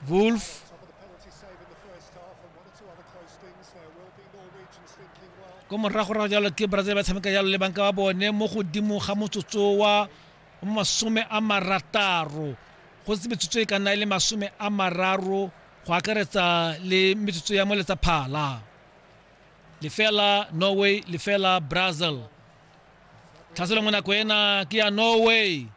Wolf. ko moragorago jalo ke brazil ba tshameka jalo le banka ba bone mo godimo ga motsotso wa masome a marataro go se metsotso e ka nna e le masome a mararo go akaretsa le metsotso ya moletsa phala lefela norway lefela brazil tlhaselo mo nako ena ke ya norway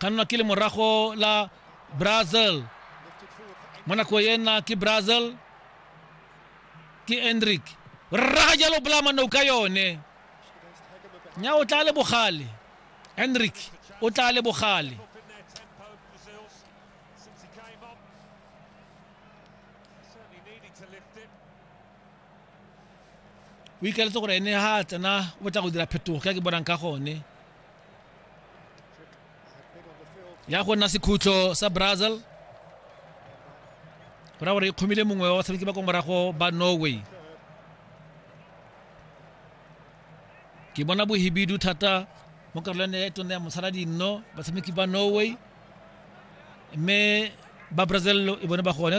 ka nna ke le morago la brazil mo nako e nna ke brazil ke endrick o rraga jalo bolamanao ka yone nya o tla le bogale endrick o tla le bogale o ikaletse gore ene ha a tsena o batla go dira phetogo ka ke bonang ka gone ya go nna sekhutlo sa brazil go ra gore e kgomile mongwe wa batshameki ba kwa morago ba norway ke bona bohibidu thata mo karolwane ya tone ya mosala dinno batshameki ba norway mme ba brazil e bone ba gone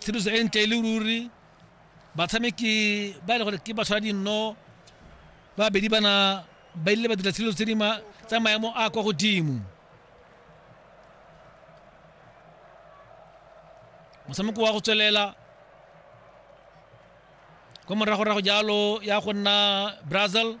tshedimoso e ntle e le ruri batshameki ba e le gore ke ba tshwara dinno babedi bana ba ile ba dira tshedimoso tse di tsa maemo a kwa godimo motshameko wa go tswelela kwa moragorago jalo ya go nna brazil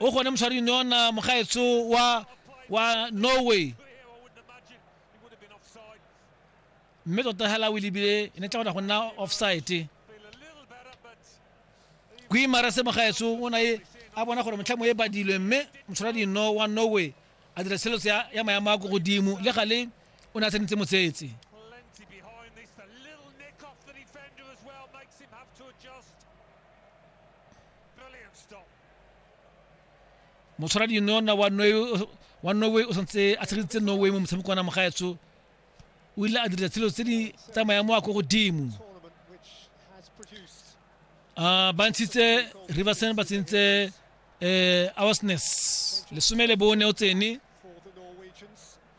o gone moshwaring yona mogaetso wa wa norway mme tota hela o lebile e ne tla gona go nna offside kuimara se mogaetso o na e a bona gore motlhamo e badilwe mme motshwara dino wa norway a dira tsheletso ya, ya maemo a ko godimo le gale o ne a tsenetse motsetse motshwaradi yona wa wa norway o santse a tshegetitse norway mo motshameko wa nama gaetsho o ile a dira tshelo tse di tsamayang mo a ko godimo um ba ntshitse riverson ba tsentse um eh, awasness lesome le bone o tsene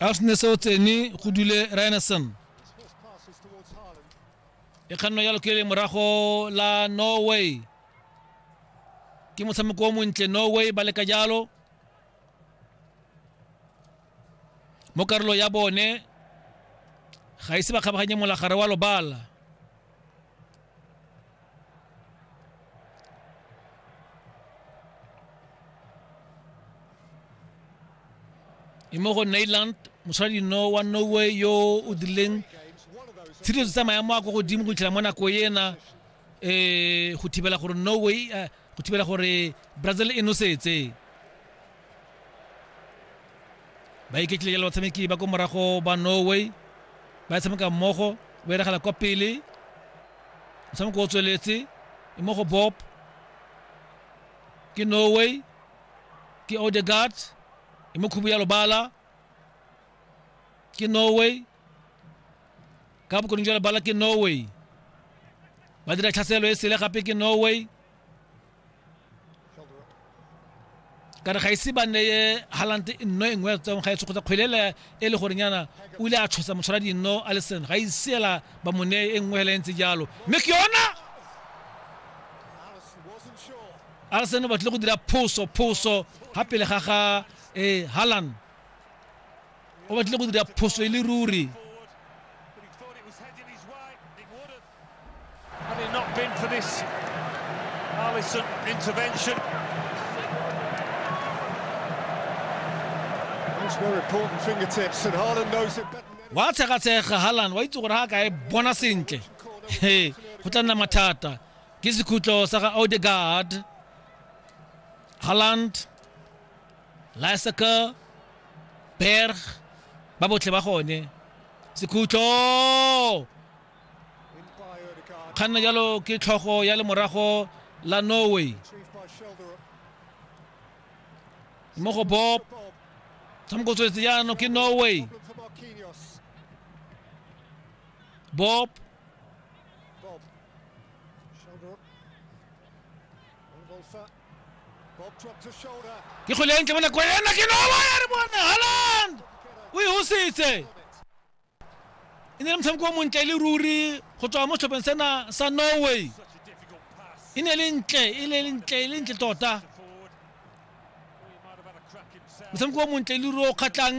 arsenal sa otse ni go dule ryanason e kganno ya lokele morago la norway ke motshameko o montle norway ba leka jalo mo karolo ya bone ga ise ba kgabaganye molagare wa lobala e mo go nailand moshwadino wa norway yo o dirileng tshireletso tsa maemo a ko godimo go itlhela mo nako ena um go thibela gore norway eh, go thibela gore brazil e nosetse ba iketlile le batshameki ba ko morago ba norway ba tshameka mmogo ba iragala kwa pele motshameko o tsweletse e mo go bob ke norway ke odegard e mo khubu ya lobala ke norway ka bokoning jwa lebala ke norway ba dira tlhaselo e sele gape ke norway ka re ga ise ba neye halante nno e nngwe ya tsong ga e tshokgotsa kgwelele e le gorenyana o ile a tshosa motshwara dinno a le sen ga iseela ba mo neye e nngwe hela e ntse jalo mme ke yona alison o batlile go dira phoso phoso ga pele ga ga eh, halan o batlile go dira phoso e le ruri Had it not been for this Allison intervention. wa tshegatshega halan wa itse gore ga kae bona sentle he go tla nna mathata ke sekhutlo sa ga odegard haland lysaker berg ba botlhe ba gone sekhutlo kganna jalo ke tlhogo ya lemorago la norway mo go bob tshamoko tswetse jaanong ke norway bob ke kgole ya ntle mo nako ena ke norway a re bone holland o e hositse e ne le motshameko o montle e le ruri go tswa mo setlhopheng sena sa norway e ne le ntle e le ntle e le ntle tota motshameko o montle e le ruri o kgatlhang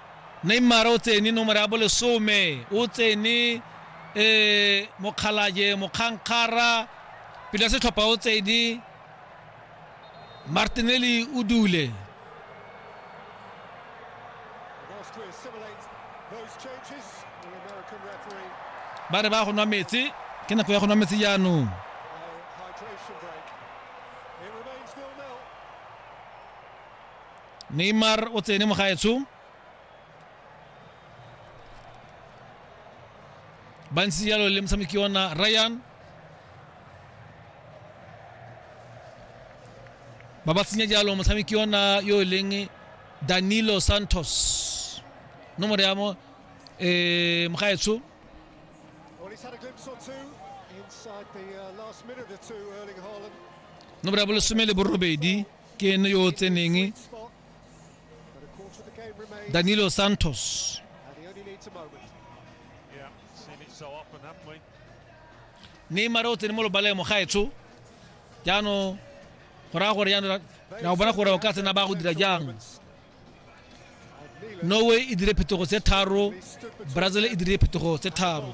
Neymar o tsene nomoro ya bolesome, o tsene Mokgalajee Mokgangkgara, pele ya setlhopha o tsene Martinelli o dule. Ba re ba go nwa metsi, ke nako ya go nwa metsi jaanong. neymar o tsene mogaetsho ba ntse jalo le motshameki ona ryan ba ba tsenya jalo motshameki ona yo e leng danilo santos nomoro ya mo eh, mogaetsho Well, he's had a glimpse or two inside the uh, last minute or two, Erling Haaland. nomoro ya bolesome le borobedi ke ene yo o tseneng danilo santos neymar o tsene mo lobaleng mo gaetsho jaanong go raya gore jaanong ra bona gore o ka tsena ba go dira jang norway e dire phetogo tse tharo brazil e dire phetogo tse tharo